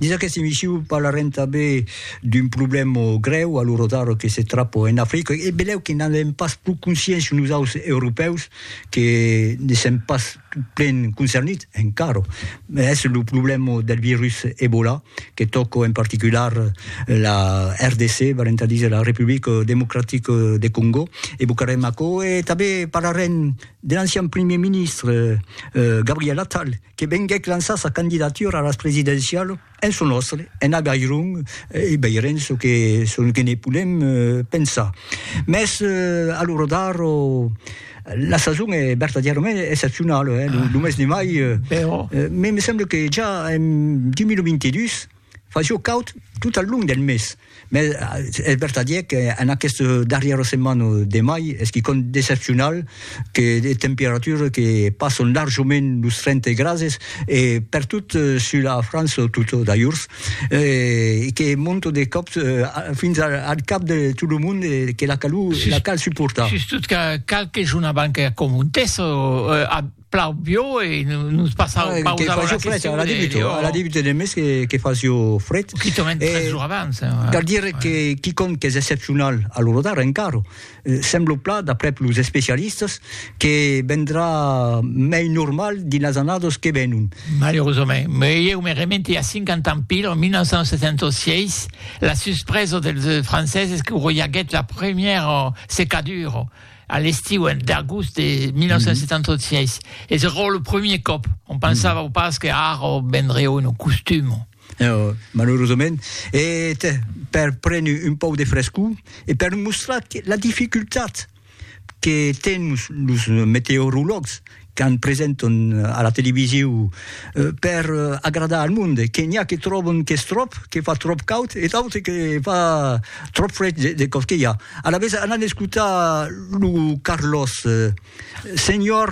Dins aquesta emission parlarem tanben d'un problèma grèu a lo rotaro que se trapa en Africa e belèu que n'an èm pas pro conscients nosaus europèus que ne sèm pas plen concernits encara. Es lo problèma del virus Ebola que tòca en particular la RDC, valent a díser la Republica Democratica de Congo e bocarem aquò e tanben parlarem de l'ancian primièr ministre Gabriel Attal, que venguèc lançar sa candidatura a las presidencialu en çò nòstre, en Agairon, e veirem çò que, çò que ne podem pensar. Mès, a lo rodar, la sason es vertadièrament excepcionala, eh, lo mes de mai, me semble que ja en 2022, Fa jo caud tot al long del mes, mès es vertadièr qu'en aquesta darrièra setmana de mai es quicòm d'excepcional, que de temperatures que passan larjament los 30 grases, e pertot sus la França tota d'ajorns, e que monta de còp fins al cap de tot lo mond e que la calor la cal suportar. Sustot qu'a qualque jorn abans que acontèssa, plau bio e nos passau ah, pausa a la question. La débute, de, oh. la débute de mes que, que fasio fred. Qui te met tres jours abans. Eh, ouais. Cal dire ouais. que quiconque que és excepcional a l'Orodar encara, eh, sembla pla, d'après los especialistes, que vendrà mei normal dins les annados que venon. Malheureusament. Me eu me remente a 50 ans pil, en 1976, la suspresa dels franceses que roiaguet la première secadura a l'estiu en d'agost de 1976 mm -hmm. e se rò lo premier còp on pensava mm -hmm. pas que ara vendria un costum No, malheureusament, e per prendre un pau de frescor e per mostrar la dificultat que tens los meteorologs qu'an presenton a la televisiu per agradar al monde, que n'i a que tròbon qu'es tròp, que fa tròp caud e d'autres que fa tròp fred de còsquelha. Alavetz anan escotar lo Carlos. Senhor.